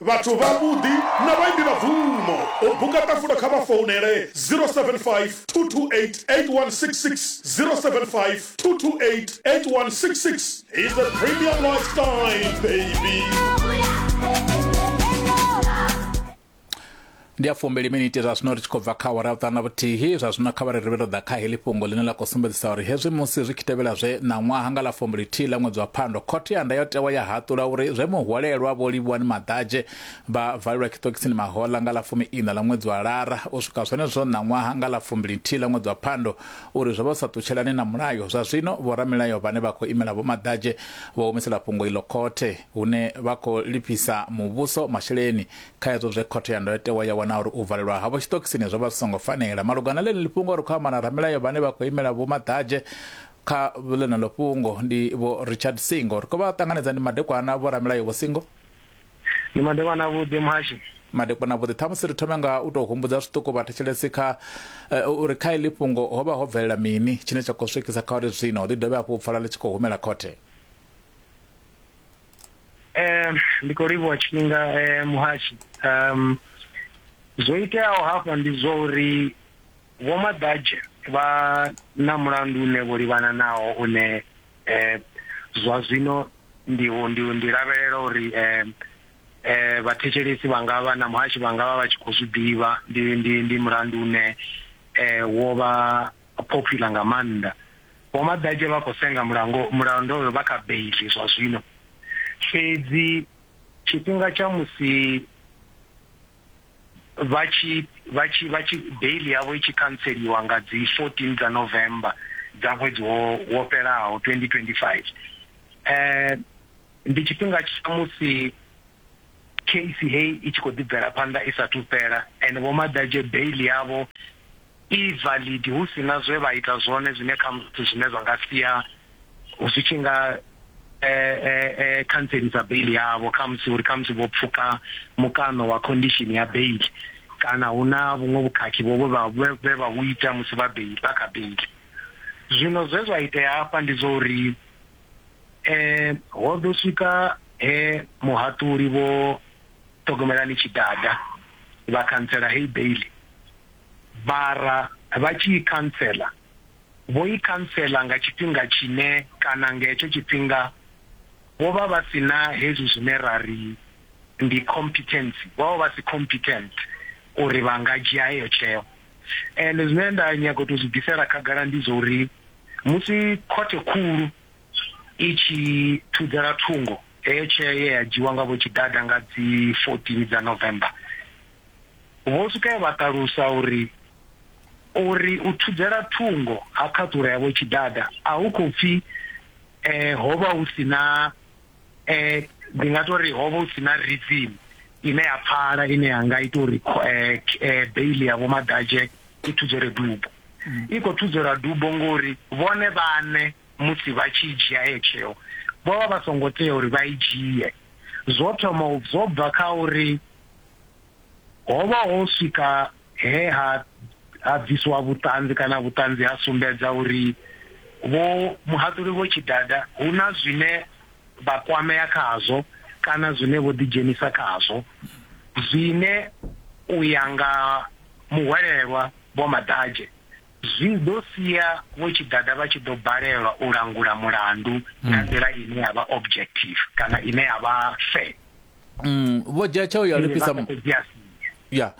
Vhathu vhavhuḓi na vhaimbi vha bvumo. U buka ṱafulo kha vha founele 0752288166, 0752288166. He's a premium lifestyle baby. ndi ya fumbili miniti zwa zwino ri tshi khou bva kha awara vhuṱanu na vhuthihi zwa zwino kha vhari ri vhe ro ḓa kha heḽi fhungo ḽine ḽa khou sumbedzisa uri hezwi musi zwi tshi tevhela zwe ṋaṅwaha nga ḽa fumbili-thihi ḽa ṅwedzi wa phando khothe ya ndayotewa ya haṱula uri zwe muhwalelwa vho livhuwani maḓadzhe vha valelwa tshiṱokisini mahoḽa nga ḽa fumi-iṋa ḽa ṅwedzi wa lara u swika zwenezwo ṋaṅwaha nga ḽa fumbili-nthihi ḽa ṅwedzi wa phando uri zwo vha zwi sa ṱutshelani na mulayo zwa zwino vhoramilayo vhane vha khou imela vhomaḓadzhe vho humisela fhungo iḽo khothe hune vha khou lifhisa muvhuso masheleni Kha hezwo zwe Khothe ya Ndayotewa ya wana uri u valelwa havho tshiṱokisini zwo vha zwi songo fanela. Malugana na ḽeneḽi fhungo, ri khou amba na ramilayo vhane vha khou imela Vho Maḓadzhe kha ḽeneḽo fhungo, ndi Vho Richard Singo. Ri khou vha ṱanganedza. Ndi madekwana, Vho Ramilayo Vho Singo. Ndi madekwana avhuḓi, Muhashi. Madekwana avhuḓi. Ṱhamusi ri thome nga u tou humbudza zwiṱuku vhathetshelesi kha uri kha iḽi fhungo ho vha ho bvelela mini tshine tsha khou swikisa kha uri zwino ḽi dovhe hafhu u pfala ḽi tshi khou humela khothe. Eh ndi khou livhuwa tshifhinga eh muhashi um zwo iteaho hafha ndi zwa uri vho maḓadzhe vha na mulandu une vho livhana nawo une eh zwa zwino ndi ndi ndi lavhelela uri eh eh vhathetshelesi vha nga vha na muhashi vha nga vha vha tshi khou zwi ḓivha ndi ndi ndi mulandu une eh wo vha popular nga maanḓa Vho Maḓatshe vha khou senga mulango mulando uyo vha kha beiḽi zwa zwino, fhedzi tshifhinga tsha musi vha tshi vha tshi vha tshi beiḽi yavho i tshi khantseliwa nga dzi 14 dza November dza ṅwedzi wo wo fhelaho 2025 ndi tshifhinga tsha musi case heyi i tshi khou ḓi bvela phanḓa i sathu fhela and Vho Maḓatshe beiḽi yavho i validi hu si na zwe vha ita zwone zwine khamusi zwine zwa nga sia zwi tshi nga khantselisa beiḽi yavho, khamusi uri khamusi vho pfuka mukano wa khondishini ya beiḽi kana hu na vhuṅwe vhukhakhi vho vha vhe vha vhu ita musi vha beiḽi vha kha beiḽi. Zwino zwe zwa itea hafha ndi zwa uri ho ḓo swika he muhaṱuli vho Ṱhogomelani Tshidada vha khantsela heyi beiḽi. Vhara vha tshi i khantsela, vho i khantsela nga tshifhinga tshine kana nga hetsho tshifhinga vho vha vha si na hezwi zwine ra ri ndi competency, vho vha vha si competent uri vha nga dzhia heyo tsheo. And zwine nda nyaga u tou zwi bvisela khagala ndi zwa uri musi Khothe Khulu i tshi thudzela thungo heyo tsheo ye ya dzhiiwa nga Vho Tshidada nga dzi 14 dza November, Vho Sukaya vha ṱalusa uri uri u thudzela thungo ha khaṱhulo ya Vho Tshidada a hu khou pfi ho vha hu si na ndi nga tou ri ho vha hu si na reason ine ya pfala ine ya nga ita uri bail ya Vho Madadzhe i thudzelwe dubo. I khou thudzelwa dubo ngori vhone vhaṋe musi vha tshi dzhia heyo tsheo vho vha vha songo tea uri vha i dzhie, zwo thoma zwo bva kha uri ho vha ho swika he ha ha bviswa vhuṱanzi kana vhuṱanzi ha sumbedza uri vho muhaṱuli vho tshidada hu na zwine vha kwamea khazwo kana zwine vho ḓidzhenisa khazwo zwine u ya nga muhwelelwa vho maḓadzhe zwi ḓo sia vho tshidada vha tshi ḓo balelwa u langula mulandu nga nḓila ine ya vha objective kana ine ya vha fair mm, vho dzhia tsheo ya u lifhisa ya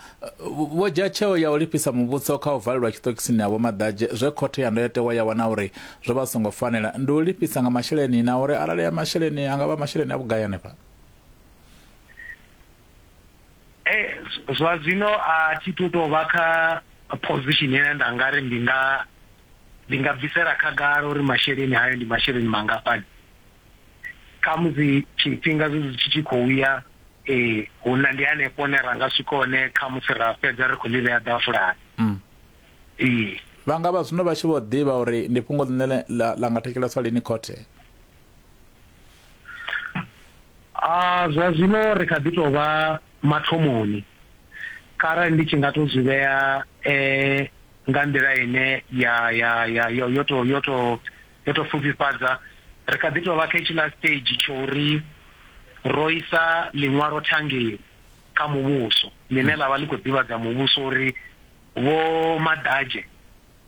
vho dzhia tsheo ya u lifhisa muvhuso kha u valelwa tshiṱokisini ha vhomaḓadzhe zwe khothe ya ndayotewa ya wana uri zwo vha songo fanela ndi u lifhisa nga masheleni na uri arali ya masheleni a nga vha masheleni a vhugai hanefha eh, zwa zwino a thi tu tou vha kha position ine nda nga ri ndi nga ndi nga bvisela khagala uri masheleni hayo ndi masheleni mangafhani khamusi tshifhinga zwezwi tshi tshi khou ya um hu na ndi hanefho hune ra nga swika hone khamusi ra fhedza ri khou ḽi vhea ḓafulani mm. ee vha nga vha zwino vha tshi vho ḓivha uri ndi fhungo ḽine ḽa nga thekeleswa lini khothe a ah, zwa zwino ri kha ḓi tou vha mathomoni kharali ndi tshi nga to zwi vhea eh nga nḓila ine ya ya ya yo to yo to Yo tou pfufhifhadza, ri kha ḓi tou vha kha hetshiḽa stage tsha uri ro isa ḽiṅwalo thangeni kha muvhuso ḽine ḽa vha ḽi khou ḓivhadza muvhuso uri Vho Madadzhe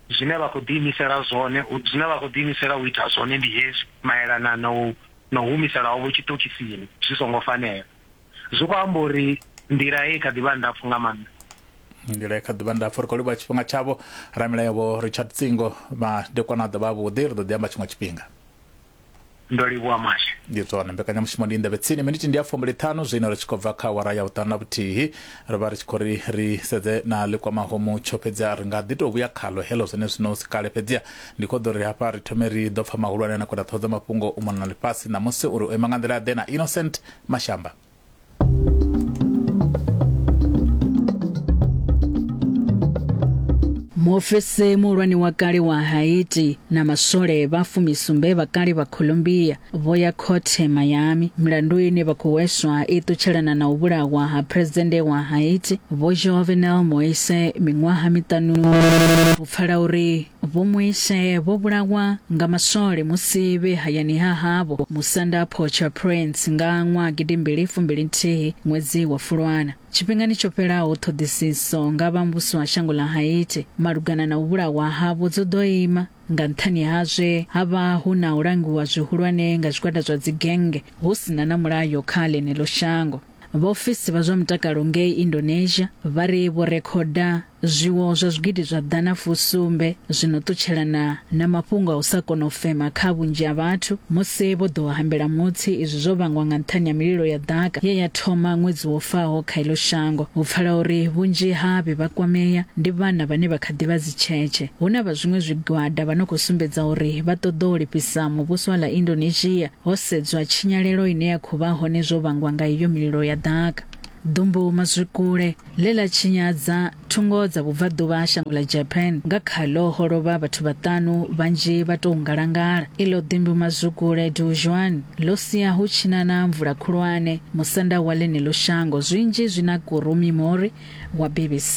zwine vha khou ḓiimisela zwone, zwine vha khou ḓiimisela u ita zwone ndi hezwi malelana na u na u humisela havho tshiṱokisini zwi songo fanela. zwi khou amba uri nḓila ye kha ḓivha ndapfu nga maanḓa nḓila kha ḓuvha ndapfu ri khou livhuwa tshifhinga tshavho ramilayo vho richard tsingo madekwana a ḓovha avhuḓi ri ḓo ḓi amba tshiṅwe tshifhinga ndo livhuwa mashe ndi zwone mbekanyamushumo ndi ndavhe tsini miniti ndi ya fumbili ṱhanu zwino ri tshi khou bva kha awara ya vhuṱanu na vhuthihi ri vha ri tshi khou ri ri sedze na ḽikwamaho mutsho fhedzi a ri nga ḓi tou vhuya khalo helo zwene zwino si kale fhedzi ndi khou ḓo ri hafha ri thome ri ḓo pfa mahulwane na kwenda ṱhoho dza mafhungo u mona na ḽifhasi ṋamusi uri u ima nga nḓila ḓe na innocent Mashamba. muofisi muhulwane wa kale wa haiti na maswole vha fumisumbe vha kale vha colombia vho ya khothe miami milandu ine vha khou hweswa i ṱutshelana na u vhulawa ha phuresidennde wa haiti vho jovenel moise miṅwaha miṱanu u pfala uri Vho Moise vho vhulawa nga maswole musi vhe hayani ha havho musanda Port-au-Prince nga ṅwaha gidimbili fumbili nthihi ṅwedzi wa Fulwana. Tshifhingani tsho fhelaho ṱhoḓisiso nga vha muvhuso wa shango ḽa Haiti malugana na u vhulawa havho dzo ḓo ima nga nṱhani ha zwe ha vha hu na u langiwa zwihulwane nga zwigwada zwa dzigennge hu si na na mulayo kha ḽeneḽo shango. Vhaofisi vha zwa mutakalo ngei Indonesia vha ri vho rekhoda Zwiwo zwa zwigidi zwa ḓana fusumbe zwi no ṱutshelana na mafhungo a u sa kona u fema kha vhunzhi ha vhathu musi vho ḓo hambela Mutsi. Izwi zwo vhangwa nga nṱhani ha mililo ya ḓaka ye ya thoma ṅwedzi wo faho kha iḽo shango. Ho pfala uri vhunzhi ha vhe vha kwamea ndi vhana vhane vha kha ḓi vha dzitshetshe. Hu na vha zwiṅwe zwigwada vha no khou sumbedza uri vha ṱoḓa u lifhisa muvhuso wa ḽa Indonesia ho sedzwa tshinyalelo ine ya khou vha hone zwo vhangwa nga iyo mililo ya ḓaka. Ḓumbu mazwikule ḽe ḽa tshinyadza thungo dza vhubvaḓuvha ha shango ḽa Japan nga khaḽo ho lovha vhathu vhaṱanu vhanzhi vha tou ngalangala. Iḽo ḓimbu mazwikule Duzhuan ḽo sia hu tshi na na mvula khulwane musanda wa ḽeneḽo shango, zwinzhi zwi na Kurumi Mori wa BBC.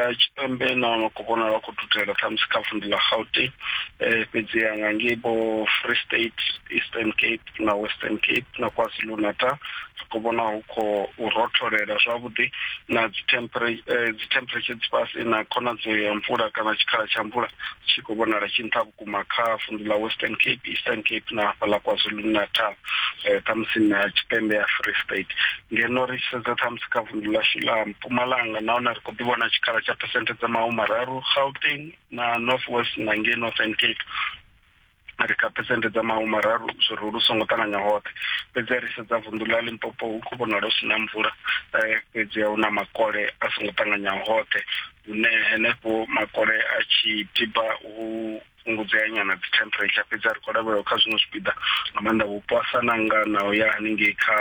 Afrika Tshipembe na no khou vhonala khou dudela ṱhamusi kha vunḓu ḽa Gauteng um fhedziha nga ngei vho Free State Eastern Cape na Western Cape na KwaZulu Natal ri khou vhona hu khou rotholela zwavhuḓi na dzi temperature dzi fhasi na khonadzeo ya mvula kana tshikhala tsha mvula tshi khou vhonala tshi nṱha vhukuma kha vundu ḽa western cape eastern cape na hafha ḽa kwazulu natal um ṱhamusi na tshipembe ya free state ngeno ri tshi sedza ṱhamusi kha vundu ḽashu ḽa mpumalanga nahone ri khou ḓi vhona tshikhala tsha phesenthe dza mahu mararu gauteng na north west na ngei northern cape ri kha phesenthe dza mahu mararu zwiri lu songo ṱanganya hoṱhe fhedzi ri sedza vunḓu ḽa limpopo hu khou vhonala hu si na mvula um fhedzi hu na makole a songo ṱanganyaho hoṱhe hune henefho makole a tshi tiba u fhungudzea nyana dzi temperature fhedzi a ri khou lavhelelwa kha zwiṅwe zwipiḓa nga maanḓa vhupo a sa nanga na u ya haningei kha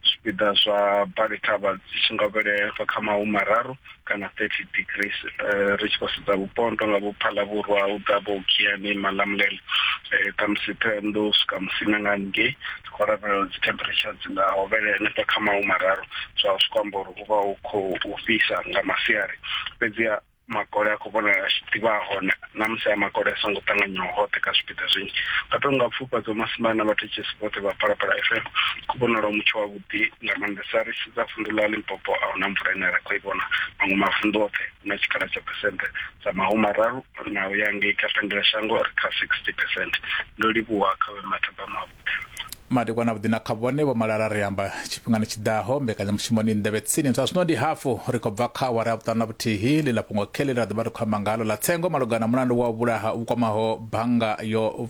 zwipiḓa zwa balethavha dzi tshi nga vhelefa kha mahu mararu kana 30 degrees eh, ri tshi khou sedza vhupo nto nga vho phalavhurwa u ḓa vho kiani malamulele um eh, khamusi thohoyandou swika musina nga haningei khou lavhelela dzi temperature dzi nga hovhele henefha kha mahu mararu zwa zwi kwamba uri hu vha hu khou fhisa nga masiari fhedziha makole a khou vhonala a tshi ḓivha a hone na musi a makole a songo ṱanganyiwa hoṱhe kha zwipiḓa zwinzhi nga to nga pfufha dzo masimba na vhathetshelesi vhoṱhe vha phalaphala fm khou vhonala mutsho wavhuḓi nga maanḓesa ri sedza vunḓu ḽa limpopo a huna mvula ine ra khou i vhona maṅwe mavunḓu oṱhe hu na tshikhala tsha phesente dza mahu mararu na u ya ngei kha fendela shango ri kha sixty percent ndo livhuwa kha vhe mathaba mavho madekwana vhuḓi na kha vhone vho malala ri amba tshifhingani tshi ḓaho mbekanyamushumoni nḓevhe tsini zwa zwino ndi hafu ri khou bva kha awara ya vhuṱanu na vhuthihi ḽi ḽa fhungo kheli ra ḓovha ri khou amba ngalo ḽa tsengo malugana na mulandu wa vhulaha vhu kwamaho bannga yo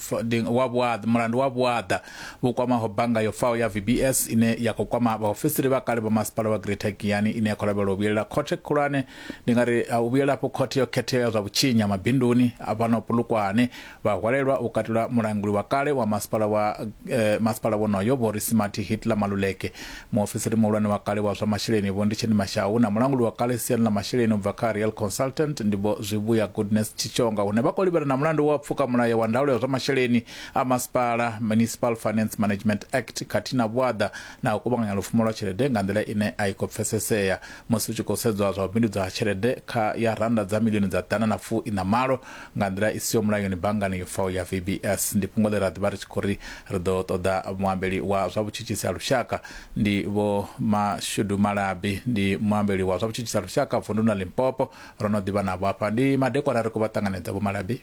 wa vhuaḓa mulandu wa vhuaḓa vhu kwamaho bannga yo faho ya vbs ine ya khou kwama vhaofisiri vha kale vha masipala wa greater giyani ine ya khou lavhelela u vhuyelela khothe khulwane ndi nga ri u vhuyela afho khothe yo khetheaho ya zwa vhutshinyi ha mabinduni a fhano pulukwane Vha hwalelwa u katela mulanguli wa kale wa masipala wa eh, masipala wonoyo Vho Risimathi Hitler Maluleke, muofisiri muhulwane wa kale wa zwa masheleni Vho Nditsheni Mashau na mulanguli wa kale siani ḽa masheleni u bva kha Real Consultant ndi Vho Zwivhuya Goodness Tshitshonga hune vha khou livhana na mulandu wa pfuka mulayo wa ndaulo ya zwa masheleni a masipala Municipal Finance Management Act khathihi na vhuaḓa na u kuvhanganya lupfumo lwa tshelede nga nḓila ine a i khou pfesesea musi hu tshi khou sedzwa zwa u bindudza ha tshelede kha ya rannda dza milioni dza ḓana na fu iṋa malo Nga nḓila i siho mulayoni, banngani yo faho ya VBS ndi fhungo ḽe ra ḓi vha ri tshi khou ri ri ḓo ṱoḓa. Muambeli wa zwa vhutshutshisi ha lushaka ndi Vho Mashudu Malabi, ndi muambeli wa zwa vhutshutshisi ha lushaka vunduni ḽa Limpopo. Ro no ḓi vha navho afha. Ndi madekwana ri khou vha ṱanganedza, Vho Malabi.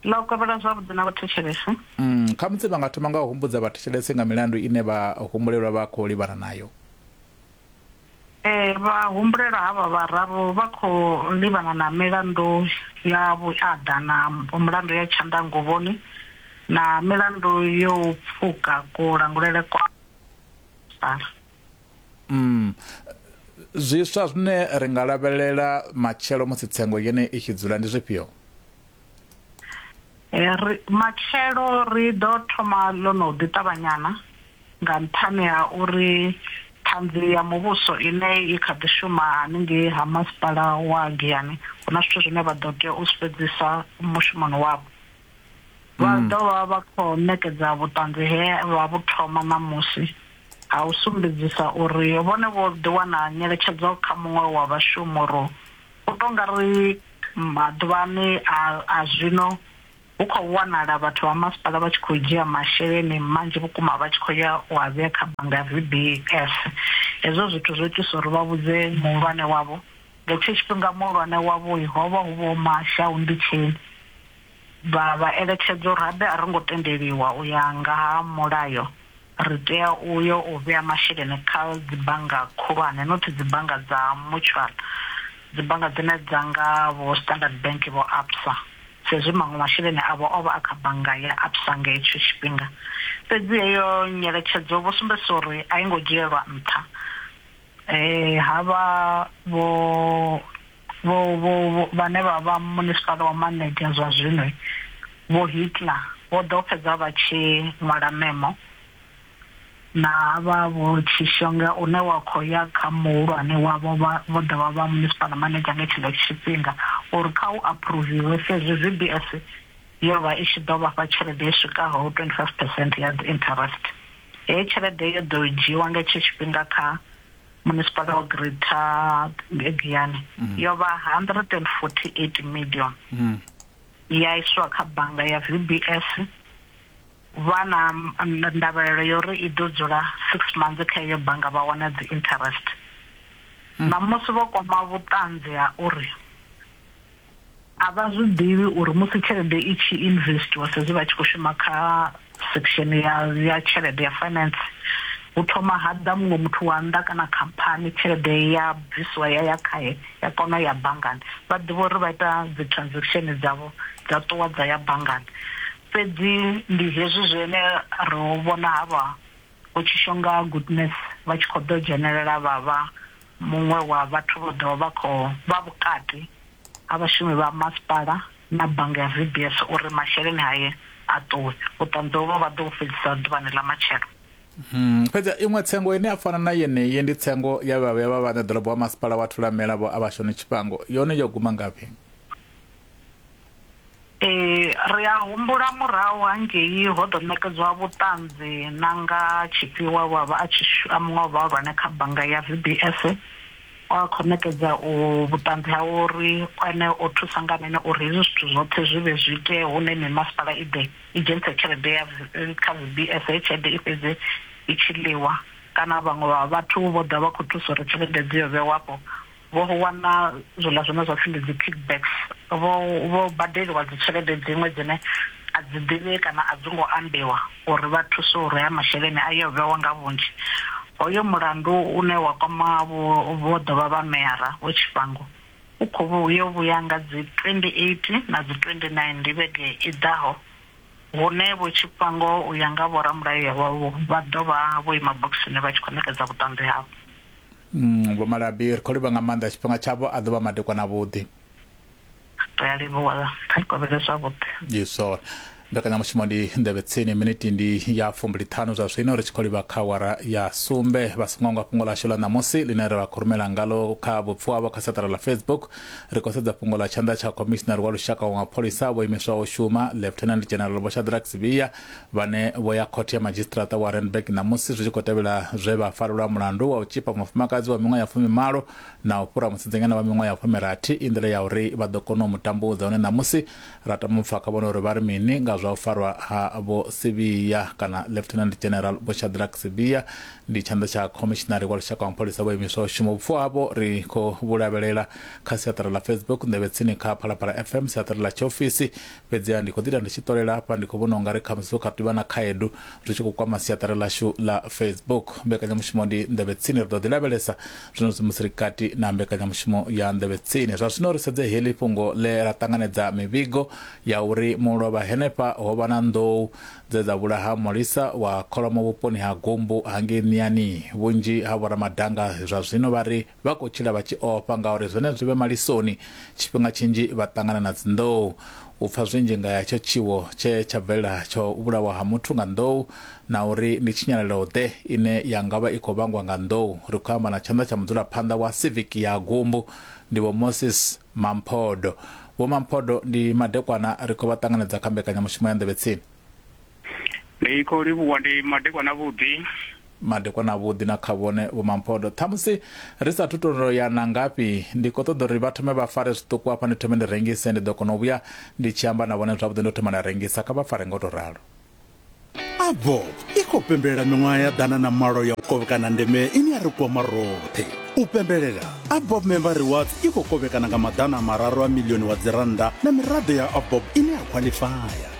Ḽa u kovhela zwavhuḓi na vhathetshelesi. Khamusi vha nga thoma nga u humbudza vhathetshelesi nga milandu ine vhahumbulelwa vha khou livhana nayo. Ee, vhahumbulelwa havha vhararu vha khou livhana na milandu ya vhuaḓa na mulandu ya tshanḓanguvhoni na milandu yo u pfuka kulangulele kwa masipala. Umm. Zwiswa zwine ri nga lavhelela matshelo musi tsengo yenei i tshi dzula ndi zwifhio? Ri, matshelo ri ḓo thoma ḽo no ḓi ṱavhanyana nga nṱhani ha uri Ṱhanzi ya Muvhuso ine i kha ḓi shuma haningei ha Masipala wa Giyani hu na zwithu zwine vha ḓo tea u zwi fhedzisa mushumoni wavho. Vha ḓo vha vha khou ṋekedza vhuṱanzi he vha vhu thoma ṋamusi ha u sumbedzisa uri vhone vho ḓi wana nyeletshedzo kha muṅwe wa vhashumuru U tou nga ri maḓuvhani a a zwino hu khou wanala vhathu vha masipala vha tshi khou dzhia masheleni manzhi vhukuma vha tshi khou ya u a vhea kha bannga ya VBS. Hezwo zwithu zwo itisa uri vha vhudze muhulwane wavho. Nga hetsho tshifhinga muhulwane wavho ho vha hu Vho Mashau Ndutsheni. vha vha eletshedza uri habe a ro ngo tendeliwa u ya nga ha mulayo, ri tea u yo u vhea masheleni kha dzibannga khulwane, not dzibannga dza mutual, dzibannga dzine dza nga vho Standard Bank, vho Absa, sa izwi maṅwe masheleni avho o vha a kha bannga ya Absa nga hetsho tshifhinga. Fhedzi heyo nyeletshedzo vho sumbedzisa uri a i ngo dzhielwa nṱha, ha vha vho vho vho vho vhane vha vha munisipala wa Manetjie zwa zwino Vho Hitler vho ḓo fhedza vha tshi ṅwala memo na vha Vho Tshishonga une wa khou ya kha muhulwane wavho vha vho ḓo vha vha munisipala Manetjie nga tshenetsho tshifhinga uri kha u aphuruviwe sa izwi ZBS yo vha i tshi ḓo vha fha tshelede i swikaho 25 percent ya dzi interest. Heyi tshelede yo ḓo dzhiiwa nga hetsho tshifhinga kha. Munisipala wa Greater Giyani yo vha R148 miḽioni ya iswa kha bannga ya VBS. Vha na ndavhelelo ya uri i ḓo dzula six months kha iyo bannga vha wana dzi interest ṋamusi vho kwama vhuṱanzi ha uri. A vha zwi ḓivhi uri musi tshelede i tshi investwa sa izwi vha tshi khou shuma kha section ya ya tshelede ya finance hu thoma ha ḓa muṅwe muthu wa nnḓa kana khamphani tshelede ya bvisiwa ya ya khaye ya kona ya banngani vha ḓivha uri vha ita dzi transaction dzavho dza ṱuwa dza ya banngani fhedzi ndi hezwi zwine ro vhona havha vho Tshishonga Goodness vha tshi kho ḓo dzhenelela vha vha Muṅwe wa vhathu vho ḓo vha khou vha vhukati ha vhashumi vha masipala na bannga ya VBS uri masheleni hae a ṱuwe. Vhuṱanzi hovhu vha ḓo vhu fhedzisa ḓuvhani ḽa matshelo. Fhedzi ha iṅwe tsengo ine ya fana na yeneyi ndi tsengo ya vhavhuya vha vhaṋe ḓorobo wa masipala wa Thulamela Vho Abashoni Tshifhango. Yone yo guma ngafhi? Ee, ri a humbula murahu hangei ho ḓo ṋekedzwa vhuṱanzi na nga tshifhi we wa vha a tshi a muṅwe wa vhahulwane kha bannga ya VBS we a khou ṋekedza u vhuṱanzi ha uri ene o thusa nga mini uri hezwi zwithu zwoṱhe zwi vhe zwi itee hune mimasipala i ḓe i dzhenise tshelede ya kha VBS heyi tshelede i fhedze i tshi ḽiwa kana vhaṅwe vha vhathu vho ḓa vha kho thusa uri tshelede dzi yo vhewa afho. Vho wana zwiḽa zwine zwa pfi ndi dzi kickbacks, vho vho badeliwa dzi tshelede dziṅwe dzine a dzi ḓivhei kana a dzi ngo ambiwa uri vha thuswe uri haya masheleni a ye o vhewa nga vhunzhi. Hoyo mulandu une wa kwama vho vho ḓovha vha meyara vho Tshifhango u khou vhu u yo vhuya nga dzi 28 na dzi 29 ndi vhege i ḓaho hune vho Tshifhango u ya nga vho ramulayo vha vha ḓo vha vho ima bokisini vha tshi khou ṋekedza vhuṱanzi havho. Mm, Vho Malabi, ri khou livha nga maanḓa. Tshifhinga tshavho a ḓo vha madekwana avhuḓi. Ri a livhuwa, kha ni kovhele zwavhuḓi. Yesor. Mbekanyamushumo ndi Nḓevhe Tsini. Miniti ndi ya fumbili-ṱhanu zwa zwino, ri tshi khou livha kha awara ya sumbe. Vha songo hangwa fhungo ḽashu ḽa ṋamusi ḽine ra vha khou rumela ngalo kha vhupfuhavho kha seṱara ḽa Facebook. Ri khou sedza fhungo ḽa tshanḓa tsha khomishinari wa lushaka wa mapholisa vho imiswaho u shuma, Lieutenant General Vho Shadrack Sibiya, vhane vho ya khothe ya madzhisiṱiraṱa wa Randburg ṋamusi zwi tshi khou tevhela zwe vha farelwa mulandu wa u tzhipa mufumakadzi wa miṅwaha ya fumimalo na u fhura musidzanyana wa miṅwaha ya fumirathi i nḓila ya uri vha ḓo kona u mu tambudza hone ṋamusi ra tama u pfa kha vhone uri vha ri mini nga zwa u farwa ha Vho Sibiya kana Lieutenant General Vho Shadrack Sibiya ndi tshanḓa tsha khomishinari wa lushaka wa mapholisa vho imiswa u shuma vhupfu havho ri khou vhu lavhelela kha siaṱari ḽa Facebook nḓevhetsini kha Phalaphala FM siaṱari ḽa tshiofisi Fhedziha ndi khou ḓi ita ndi tshi ṱolela afha, ndi khou vhona u nga ri khamusi hu kha ḓi vha na khaedu zwi tshi khou kwama siaṱari ḽashu ḽa Facebook. Mbekanyamushumo ndi Nḓevhe Tsini, ri ḓo ḓi lavhelesa zwenezwi musi ri kati na mbekanyamushumo ya Nḓevhe Tsini. Zwa zwino ri sedze heḽi fhungo ḽe ḽa ṱanganedza mivhigo ya uri mulovha henefha ho vha na nḓou dze dza vhulaha mulisa wa kholomo vhuponi ha Gumbu ha ngei Miani. Vhunzhi ha vhoramadanga zwa zwino vha ri Vha khou tshila vha tshi ofha ngauri zwenezwo vhe malisoni tshifhinga tshinzhi vha ṱangana na dzinḓou. U pfa zwinzhi nga hetsho tshiwo tshe tsha bvelela tsha u vhulawa ha muthu nga nḓou na uri ndi tshinyalelo-ḓe ine ya nga vha i khou vhangwa nga nḓou, ri khou amba na tshanḓa tsha mudzulaphanḓa wa Civic ya Gumbu, ndi Vho Moses Mamphodo. Vho Mamphodo ndi madekwana ri khou vha ṱanganedza kha mbekanyamushumo ya Nḓevhetsini. Ndi khou livhuwa ndi madekwana avhuḓi. Madekwana avhuḓi na kha vhone Vho Mamphodo. Ṱhamusi ri sa thu tou ya na ngafhi, ndi khou ṱoḓa uri vha thome vha fare zwiṱuku hafha ndi thome ndi rengise, ndi ḓo kona u vhuya ndi tshi amba na vhone zwavhuḓi ndo thoma nda rengisa, kha vha fare nga u tou ralo. Avop i khou pembelela miṅwaha ya ḓana na malo ya u kovhekana ndeme ine ya ri kwama roṱhe. U pembelela, Avop Member Rewards i khou kovhekana nga maḓana a mararu a milioni wa dzirannda na miraḓo ya Avop ine ya khwaḽifaya.